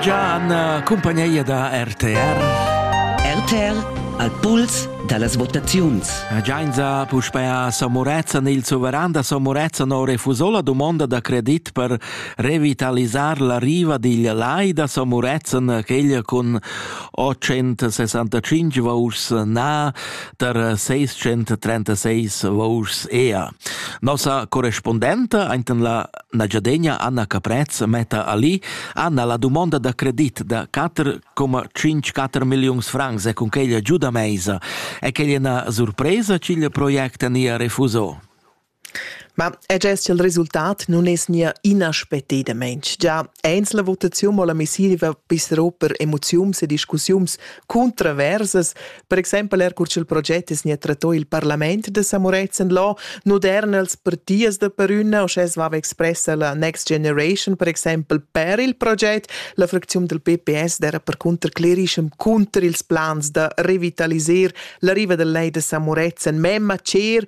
Gianna, cumpagneia da RTR. RTR al puls da las votaziuns. Giainza puspè a San Murezzan. Il suveran da San Murezzan ha refusò la dumonda da credit per revitalisar la riva digl lai da San Murezzan, quegl cun 865 vouschs na tar 636 vouschs ea. Nossa correspondenta, ainten la La giadegna Anna Caprez metta ali Anna la dumonda da credit da 4,54 milliuns francs e cun quella giuda meisa e quella è una surpresa ch'il project nia refuso. Ma è gest il resultat non es nia inaspettadamain. Già eins la votaziun mo la messiva pisseroper emoziums e discussiums controversas, Per exempel er cur ch'il proget es gnä trattò i'l parlament da Samurezen Law, noderna als partias da perünna, uschè svava expressa la Next Generation, per exempel per il proget, la fracziun del PPS d'era percunter clerischem cunter ils plans da revitaliser la riva del lei da Samurezen, memma cher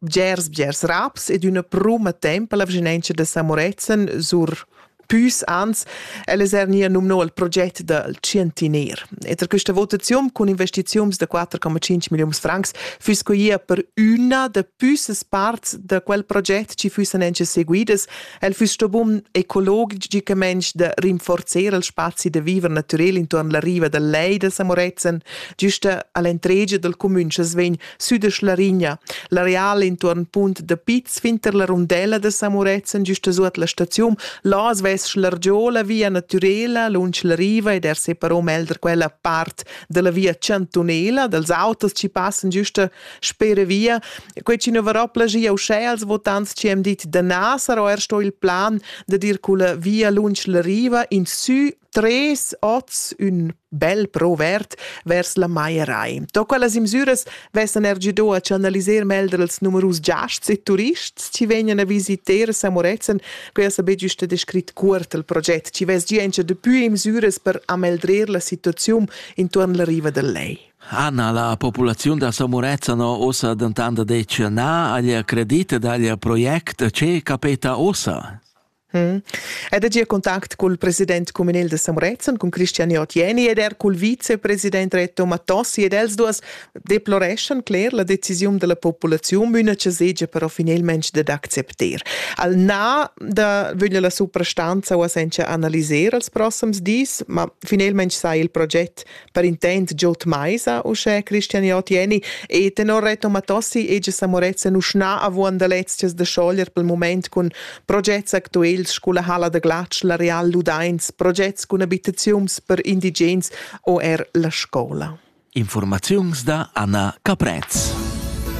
bgers bgers raps ed üna pruma tempa la vschinentscha da Samorezen sur püs ans, ella es er nia numno il proget dal Cientiner. E tra questa votazione con investizioni da 4,5 milioni francs füss quia per una da püssas parts da quel proget ci füssen anche seguidas. El füss sto bun ecologic da rinforzare il spazi da viver naturel intorno alla riva del Lei da Samorezen, giusta all'entregia del comune che vegn Südesch Larigna, l'areal intuorn Punt da Piz finter la rundella da San Murezzan giusta suot la staziun, là as vess l'argiola via natürela lunsch la riva ed er separò melder quella part dalla via chantunela, dals autos chi passan giusta spere via. Quei chi nu varò plagia uschè als votants chi hem dit da na sarò er sto il plan da dir culla via lunsch la riva in sü tres oz ün bel provert vers la Maierei. To quellas imsüras vessan er gido a canaliser melder als numerus giasts e turists chi vegnan a visiter San Moretzen, que ha be giusta descrit cuort il proget, chi vess gia encha depui imsüras per ameldrer la situaziun intuorn la riva del Lei. Anna, la populaziun da San Morezzan ossa dentant detg na agli credit dagli project. Ce capeta ossa? Hm. Ed er gia contact cul president communal de San Murezzan, cun Cristian Otieni ed er cul vicepresident Reto Mattossi ed els duas deploreschan cler la decisiun della populaziun üna che segia però finalmente dad accepter. Al na da vöglia la suprastanza o senza analiser als prossams dis, ma finalmente sai il proget per intent giot meisa uschè Christian Jotieni e tenor Reto Matossi ege sa Morezza nuschna avuan da lezias da schoglier pel moment cun progets actuels sculla hala da glatsch la Real Ludains, progets cun abitaziuns per indigens o er la scola. Informaziuns da Anna Caprez.